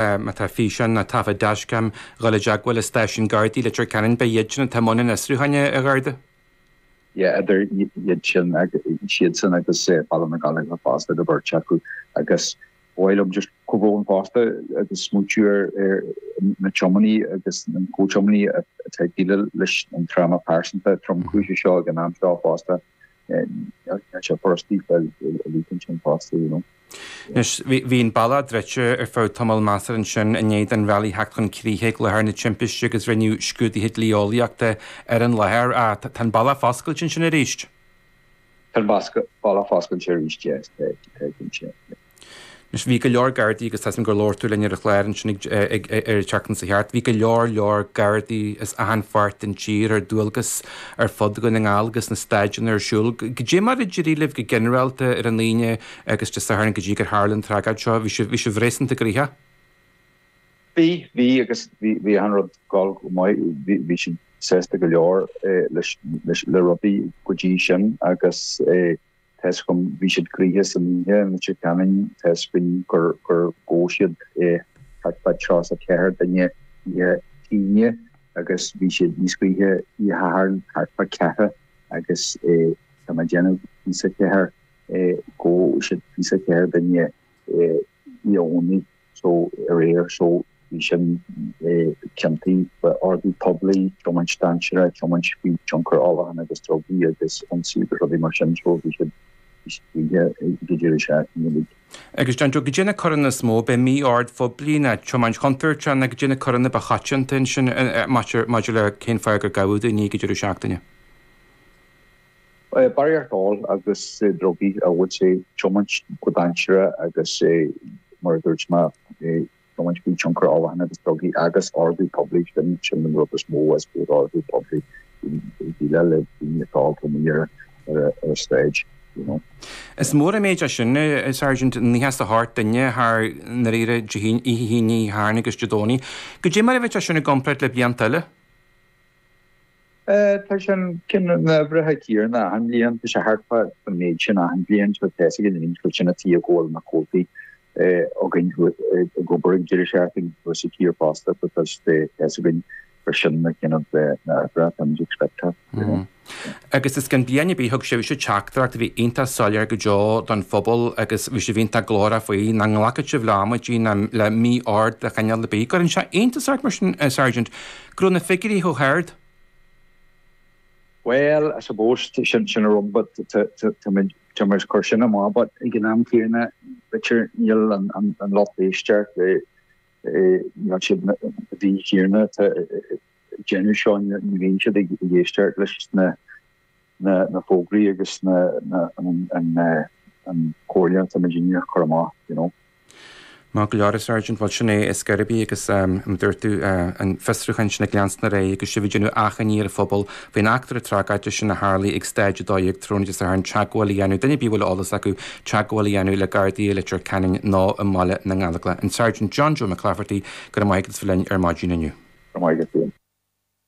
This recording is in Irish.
Má tá físeáin nó taifid dashcam dul i dteagmháil le stáisiún Gardaí Leitir Ceanainn, beidh iadsan atá i mbun an fhiosrúcháin, a Gharda. Yeah, idir iadsan is iadsan agus Baile na nGallóglach fosta, an bheirt acu. Agus ba mhaith liom just comhbhrón fosta agus smaointiú ar na tiománaí agus na comhthiománaí atá ag déileáil leis an tráma pearsanta tromchúiseach seo ag an am seo fosta. Anois, bhí an bealach druidte ar feadh tamall measartha ansin i ndiaidh don rally theacht chun críche ag láthair na timpiste agus rinneadh scrúduithe dlí-eolaíochta ar an láthair. Tá an bealach foscailte ansin arís? Tá an bealach foscailte arís, tá, cinnte. Anois, bhí go leor Gardaí, agus tá's agam gur labhair tú linn ar an chlár ansin ag, ag, ag, ar an tseachtain seo chuaigh thart, bhí go leor, leor Gardaí as achan pháirt den tír ar dualgas ar fud Dhún na nGall agus na staideanna ar siúl. Goidé mar a d'éirigh libh go ginearálta ar an Aoine agus Dé Sathairn go dtí gur tharla an tragóid seo? Bhí sibh, bhí sibh réasúnta gnoitheach? Bhí, bhí agus bhí, bhí achan rud go, go maith, bhí, bhí siad sásta go leor eh leis, leis, le rudaí go dtí sin agus eh. Tá's agam, bhí siad gnoitheach san oíche i Leitir Ceanainn, tá's againn gur ghabh siad eh thart fá tríocha is a ceathair duine oíche Aoine agus bhí siad níos gnoithí oíche Shathairn thart fá ceathracha agus tá mé ag déanamh fiche is a ceathair gur ghabh siad fiche is a ceathair duine oíche Dhomhnaigh. so aréir so bhí sin eh ciontaí eh ordú poiblí tiomáint dainséarach tiomáint faoi tionchar ólacháin agus drugaí agus ionsaí agus rudaí mar sin so bhí siad bhí siad idir is ea nílig. Agus John Joe goidé na coireanna is mó ab é mí-ord phoiblí nó tiomáint chontúirteach nó goidé na coireanna ba choitianta ansin maidir maidir le cén fáth gur gabhadh daoine ag deireadh seachtaine. Barraíocht óil agus drugaí bhuel tá sé tiomáint go dainséarach agus eh, mar a dúirt mé, eh tiomáint faoi tionchar ólacháin agus drugaí agus ordú poiblí, sin sin an rud is mó is mó ordú poiblí ag déileáil le daoine atá amuigh ar ar an sráid, you know. Is mór an méid é sin, a Sergeant, nócha is a hocht duine thar ndáiríre Dé hAoine, Dé Sathairn agus Dé Domhnaigh. Goidé mar a bheadh sin i gcompráid le blianta eile? Tá sé an cineál uimhreacha céanna achan bhliain. Tá sé thart fá an méid sin achan bhliain. Tá a fhios againn linn chuid sin a tí a ghabháil na Gardaí againn ag obair ag deireadh seachtain agus sa tír fosta but tá a fhios againn gur sin na cineál uimhreacha tá muid ag expectáil. Agus is gan bliain a bí thug sibhse teachtaireacht a bhí iontach soiléir go deo don phobal agus bhí sibh iontach glórach faoi nach nglacfadh sibh le amaidí ná le mí-ord de chineál ar bith. An gcuireann sé iontas ort mar sin, a Sergeant, Go raibh na figiúirí chomh hard. Bhuel, I suppose, sin sin an rud but tá tá muid tá muid ag cur sin amach but ag an am céanna b'fhéidir níl an an an lucht éisteacht eh eh níl siad na daoine céanna atá ag déanamh seo ní bhíonn siad ag éisteacht leis na na fógraí agus an comhairle atá muid a dhéanamh a chur amach, you know. Maith go leor, a Sergeant. Bhuel, sin é ar scor ar bith agus mar a dúirt tú an fiosrúchán sin ag leanstan ar aghaidh agus sibh ag déanamh achainí ar an phobal faoin eachtra tragóideach sin a tharlaigh ag stage 12 tráthnóna Dé Sathairn teagmháil a dhéanamh, duine ar bith a bhfuil eolas acu, teagmháil a dhéanamh le Gardaí i Leitir Ceanainn nó i mBaile na nGallóglach. An Sergeant John Joe McClafferty, go raibh maith agat as a bheith linn ar maidin inniu. Go raibh maith agat.